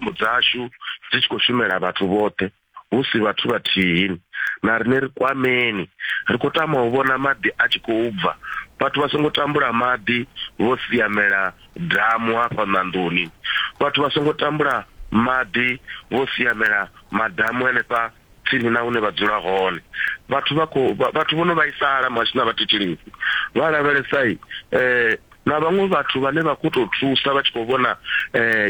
dzashu dzi tshi khou shumela vhathu vhoṱhe hu si vhathu vhathihi na riṋe ri kwameni ri khou tama u vhona maḓi a tshi khou bva vhathu vha songo tambula maḓi vho siamela damu hafha ṋandoni vhathu vha songo tambula maḓi vho siamela madamu henefha Tsini na hune vha dzula hone, vhathu vha khou vhathu vho no vhaisala muhasho na vhathetshelesi vha lavhelesa na vhaṅwe vhathu vhane vha khou tou thusa vha tshi khou vhona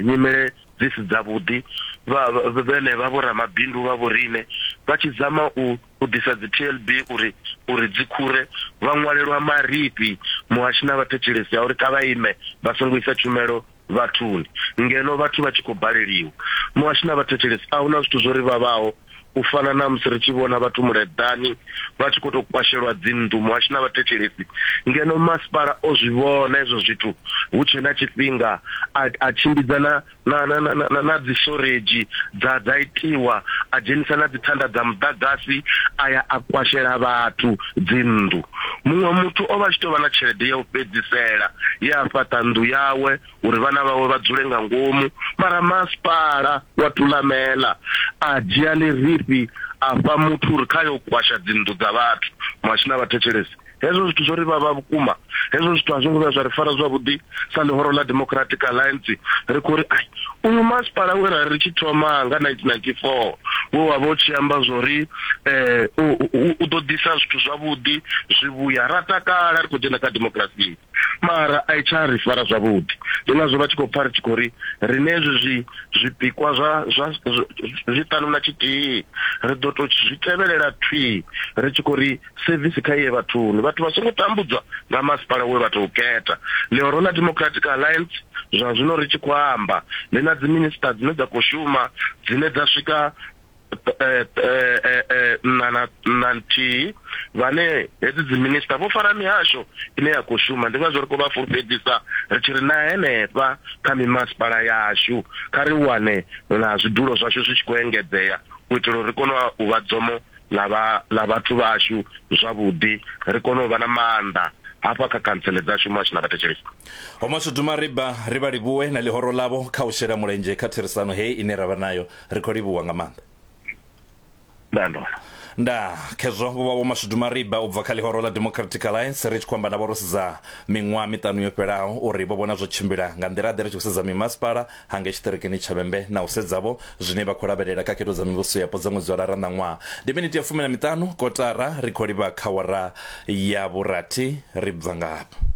nyimele dzi si dzavhuḓi vha vhene vha vho ramabindu vha vho riṋe vha tshi dzama u u ḓisa dzi TLB uri uri dzi khure vha ṅwalelwa marifhi muhasho na vhathetshelesi a uri kha vha ime vha songo isa tshumelo vhathuni ngeno vhathu vha tshi khou baleliwa. Muhashi na vhathetshelesi, a hu na zwithu zwo ri vhavhaho u fana na musi ri tshi vhona vhathu muleḓani vha tshi khou tou kwashelwa dzinnḓu, muhashi na vhathetshelesi, ngeno masipala o zwi vhona hezwo zwithu hu tshe na tshifhinga a, a tshimbidza na, na, na, na, na, na dzishoredzi dza, dza itiwa, a dzhenisa na dzithanda dza muḓagasi a ya a kwashela vhathu. dzinnḓu. Muṅwe muthu o vha a tshi tou vha na tshelede ya u fhedzisela ye a fhaṱa nnḓu yawe uri vhana vhawe vha dzule nga ngomu, mara masipala wa Thulamela a dzhia ḽirifhi a fha muthu uri kha yo kwasha dzinnḓu dza vhathu, Mwashina vha thetshelese. Hezwo zwithu zwo ri vhavha vhukuma, hezwo zwithu a zwo ngo vhuya zwa ri fara zwavhuḓi. sa ḽihoro ḽa Democratic Alliance ri khou ri ai uyu masipala we ra ri tshi thoma nga 1994 we wa vha u tshi amba zwo ri um u ḓo ḓisa zwithu zwavhuḓi zwi vhuya ra takala ri khou dzhena kha democracy mara a i tsha ri fara zwavhuḓi ndi ngazwo vha tshi khou pfa ri tshi khou ri rine hezwi zwi zwipikwa zwa zwa zwiṱanu na tshithihi ri ḓo tou zwi tevhelela thwii ri tshi khou ri sevisi kha iye vhathuni vhathu vha songo tambudzwa nga masipala we vha tou khetha. Ḽihoro ḽa Democratic Alliance zwa zwino ri tshi khou amba ḽi na dziminisiṱa dzine dza khou shuma dzine dza swika na nthihi vhane hedzi dziminisiṱa vho fara mihasho ine ya khou shuma ndi ngazwo ri khou vha fulufhedzisa ri tshi ri na henefha kha mimasipala yashu kha ri wane na zwidulo zwashu zwi tshi khou engedzea u itela uri ri kone u vha dzomo ḽa vha ḽa vhathu vhashu zwavhuḓi ri kone u vha na maanḓa hafha kha khantsele dzashu muhasho na vhathetshelesi. Vho Mashudu Mariba ri vha livhuwe na ḽihoro ḽavho kha u shela mulenzhe kha therisano hei ine ra vha nayo. Ri khou livhuwa nga maanḓa. Ndaa ndo vha. Ndaa. Khezwo vho vha Vho Mashudu Mariba u bva kha ḽihoro ḽa Democratic Alliance ri tshi khou amba navho ro sedza miṅwaha miṱanu yo fhelaho uri vho vhona zwo tshimbila nga nḓila-ḓe ri tshi khou sedza mimasipala ha ngei tshiṱirikini tsha vhembe na u sedzavho zwine vha khou lavhelela kha khetho dza mivhuso yapo dza ṅwedzi wa lara na ṅwaha ndi miniti ya fumi na miṱanu kotara ri khou livha kha wara ya vhurathi ri bva ngafha